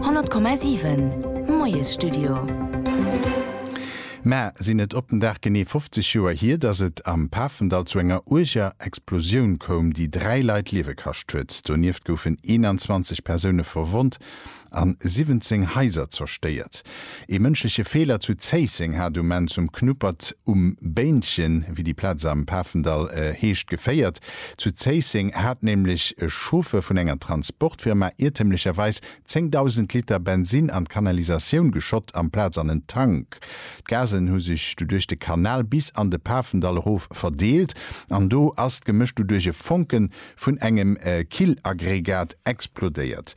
100,7 Moiesstudio. Mä sinn et op den Dag genee 50 Joer hier, datt et am Pafendall zu enger uerger Explosioun koum, déi dräi Leit d'Liewe kascht huet. Donieft goufen 21 Persoune verwonnt an 17 Haiser zerstéiert. Ee mënschleche Feeler zu Zéisseng hat um Enn zum Knuppert um Béinchen, wéi déi Plaz am Pafendall heescht, geféiert. Zu Zéisseng hat nämlech e Chauffer vun enger Transportfirma iertemlecherweis 10.000 Liter Bensin an d'Kanalisatioun geschott, amplaz an en Tank. D'Gasen hu sech du duerch de Kanal bis an de Pafendall erof verdeelt an do ass d'Gemësch du duerch e Fonke vun engem Killaggregat explodéiert.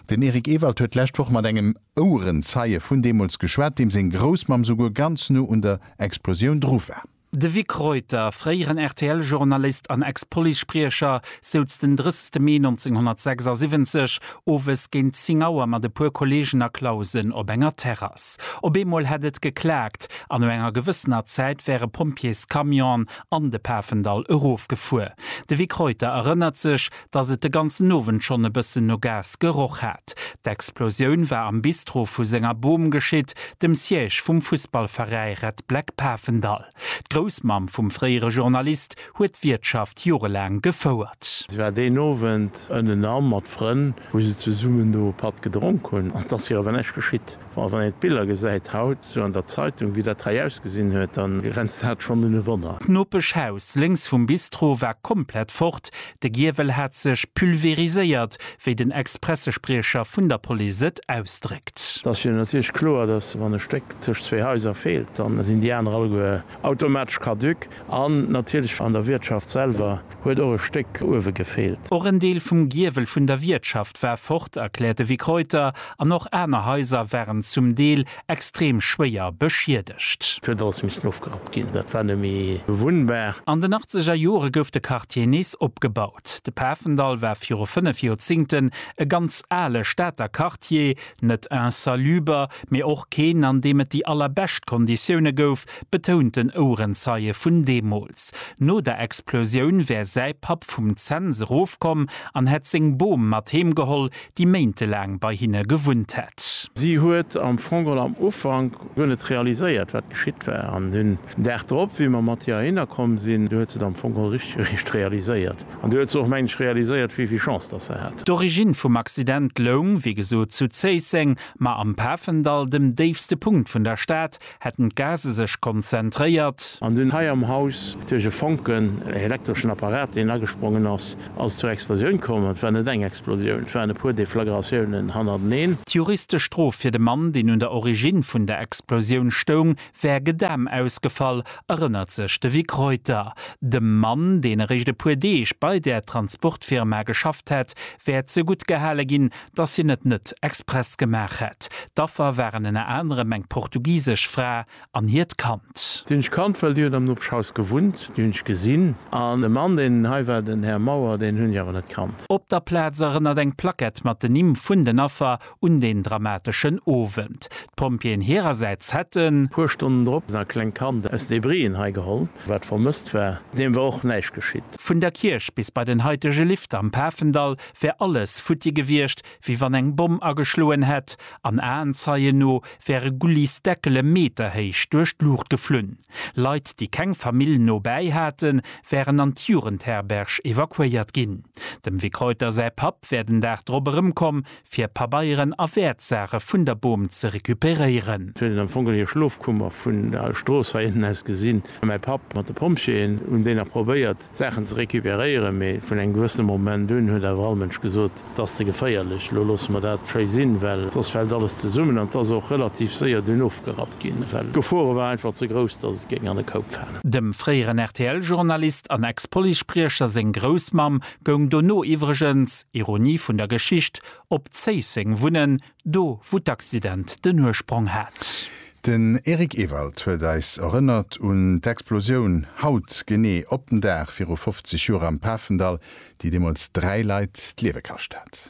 Den Eric Ewald huet d'lescht Woch mat engem. Ouerenzeie vun deemools geschwat, deem seng Groussmamm souguer ganz no un der Explosioun dru war. De Vic Reuter, fréieren RTL-Journalist an Ex-Police-Spriecher, souz den 30 Mee 1976 owes géint 10 Auer mat e puer Kolleegen a Clausen op enger Terrass. Op eemol hätt et geklaakt an no enger gewëssener Zäit wäre Pompjeescamionen an de Pafendall erofgefuer. De Vic Reuter erënnert sech, dass et de ganzen Owend schonn e bëssen no Gas geroch hat. D'Explosioun war am Bistro vu senger Bom geschitt, dem Siège vum Fussballveräi Red Black Pafendall. D'Groussmamm vum fréiere Journalist huet d'Wiertschaft jorelaang gefouert. Si war deen Owend ënnenan mat Frënn, wou se zesummen do e Patt gedronk hunn. An et ass hir awer näischt geschitt. Bon, wann een d'Biller gesäit haut sou an der Zeitung, wéi dat hei ausgesinn huet, da grenzt dat schonn un e Wonner. D'Nopeschhaus lénks vum Bistro war komplett fort, de Giewel hat sech pulveriséiert, wéi den Ex-Pressespriecher vun der Police et ausdréckt. Et ass jo natierlech kloer, dass wann e Stéck tëscht zwee Haiser feelt, da sinn déi aner alleguer automatesch caduc. An natierlech an der Wiertschaft selwer huet och e Stéck uewe gefeelt. Och en Deel vum Giewel vun der Wiertschaft war fort, erkläert de Vic Reuter, an och aner Haiser waren zum Deel extrem schwéier beschiedegt. Et huet alles missen ofgerappt ginn, dat war net méi bewunnbar. An den achtzeger Jore gouf de Quartier nees opgebaut. De Pafendall war viru fënnef Joerzingten e ganz ale Stater Quartier, net insaluber, mee och keen, an deem et déi allerbescht Konditioune gouf, betount den Ouerenzeie vun deemools. No der Explosioun wär säi Papp vum Zens erofkomm an hätt seng Bom mat heem geholl, déi méintelaang bei hinne gewunnt hätt. Si huet am Fong geholl am Ufank guer net realiséiert, wat geschitt war. An den Dag drop, wéi mer mat hir heihinner komm sinn, du huet se et am Fong geholl richteg eréischt realiséiert. An du huet se och, meng ech, realiséiert, wéi vill Chance datt se hat. D'Origine vum Accident loung, wéi gesot, zu Zéisseng, ma am Pafendall, dem déifste Punkt vun der Stad, Hätten d'Gase sech konzentréiert. An dunn hei am Haus duerch e Fonken, elektreschen Apparat, deen agesprongen ass, ass et zur Explosioun komm. An et war net eng Explosioun, et waren e puer Deflagratiounen hannerteneen. D'juristesch Strof fir de Mann, deen un der Origine vun der Explosioun stoung, wär gedam ausgefall, erënnert sech de Vic Reuter. Dem Mann, deen eréischt e puer Deeg bei där Transportfirma geschafft hätt, wär zegutt gehale ginn, dass hien et net express gemaach hätt. D'Affer waren ënner anerem eng portugisesch Fra an hiert Kand. Déi hunn ech kannt, well déi huet am Nopeschhaus gewunnt. Déi hunn ech gesinn. An de Mann, deen hei war, den Här Mauer, deen hunn ech awer net kannt. Op der Plaz erënnert eng Plackett mat den Nimm vun den Affer un deen dramateschen Owend. D'Pompjeeën hirersäits hätten. Puer Stonnen drop e klengt Kand aus Debrien hei geholl, wat vermësst war. Deem war och näischt geschitt. Vun der Kierch bis bei den haitege Lift am Pafendall wär alles futti gewiescht, wéi wann eng Bomm ageschloen hätt, an Aenzeien no wäre Gullis Deckele meterhéich duerch d'Luucht geflunn. Leit, déi keng Famill no bäi haten, wären an d'Jugendherberg evakuéiert ginn. Dem Vic Reuter säi Papp wär den Dag drop erëmkomm, fir Pabeieren a Wäertsaache vun der Bom ze recuperéieren. Sou hätt et am Fong geholl hir Schlofkummer vun der Strooss heiënten aus gesinn. Mäi Papp mat de Pompjeeën hunn déi nach probéiert, Saachen ze recuperéieren, mee vun engem gewëssene Moment un huet awer all Mënsch gesot, Et ass ze geféierlech, elo loosse mer dat schéi sinn, well soss fält alles zesummen. An et ass och relativ séier dunn ofgerappt ginn, well d'Gefore war einfach ze grouss, dass et géing an e Koup falen. Dem fréieren RTL-Journalist an Ex-Policespriecher seng Groussmamm goung dono iwwregens, Ironie vun der Geschicht, op Zéisseng wunnen, Do wou d'Accident den Ursprong hat. Den Eric Ewald huet eis erënnert un d'Explosioun haut genee op den Dag viru 50 Joer am Pafendall, déi deemools 3 Leit d'Liewe kascht hat.